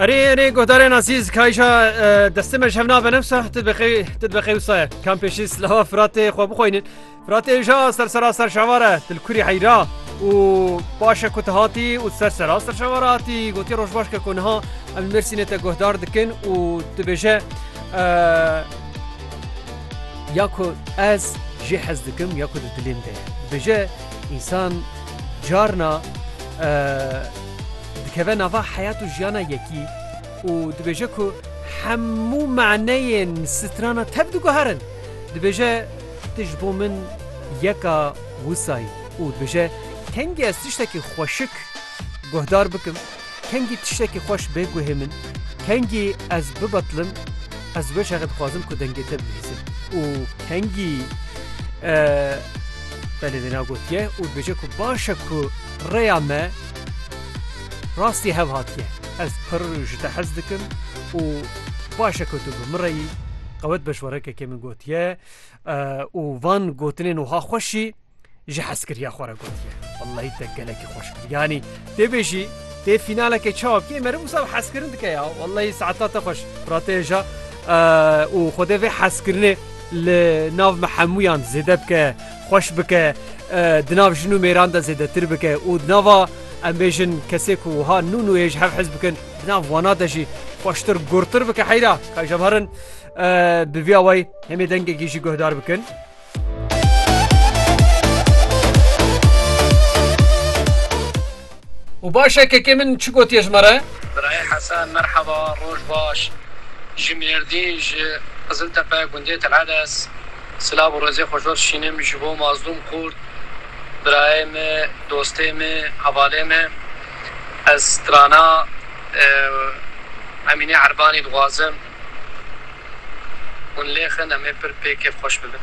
Erê erê godarên azîz kayşa destê me jev nabe nemsa tu dibexê wisa ye kam pêşî silava firatê xwe bixweynin firatê ja ser sera ser şavare til kurî heyra û paşe ku te hatî û ser sera ser şavara hatî gotiye rojbaş ke ku niha em mersînê te guhdar dikin û dibêje ya ku ez jê hez dikim ya ku di dilêm de bêje însan carna dikeve nava heyat û jiyana yekî û dibêje ku hemû maneyên strana tev diguherin. Dibêje Tu ji bo min yeka wisa yî û dibêje kengî ez tiştekî xweşik guhdar bikim, kengî tiştekî xweş bê guhê min, kengî ez bibetilim, ez wê şexê dixwazim ku dengê te bibihîzim û kengî belê wêna gotiye û dibêje ku baş e ku rêya me Rastî hev hatiye. Ez pirr ji te hez dikim û baş e ku tu bi min re yî. Qewet beşwerekekê min gotiye û van gotinên wiha xweş jî ji hezkiriya xwe re gotiye. Wellahî te gelekî xweş kir. Yanî tê bêjî tê fînaleke çawa bikê mere wisa bi hezkirin dike ya. Wellahî saeta te xweş pirateja û xwedê vê hezkirinê li nav me hemûyan zêde bike. xweş bike, di nav jin û mêran de zêdetir bike û di nava em bêjin kesê ku wiha nû nûyê ji hev hez bikin di nav wana de jî xweştir gurtir bike heyra ka ji hev herin bi vî awayî hemê dengekî jî guhdar bikin. Û baş e kekê min çi gotiye ji me re? Birayê Hesen merheba roj baş ji Mêrdîn ji Qiziltepe gundê Telhedes silav û rezê xwe jor dişînim ji bo mazlûm Kurd birayê me dostê me hevalê me ez strana Emîne Erbanî dixwazim hûn lêxin em ê pir pê kêf xweş bibin.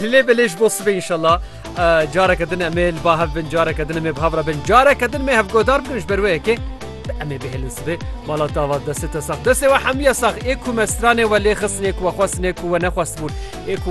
Li lê belê ji bo sibê înşallah careke din em ê li ba hev bin careke din em ê bi hev re bin careke din mê hevgodar bikin ji ber wê yekê em ê bihêlin sibê mala tava destê te sax destê we hemiye sax ê ku me stranê we lê xistinê ku we xwestinê ku we nexwestibûn ê ku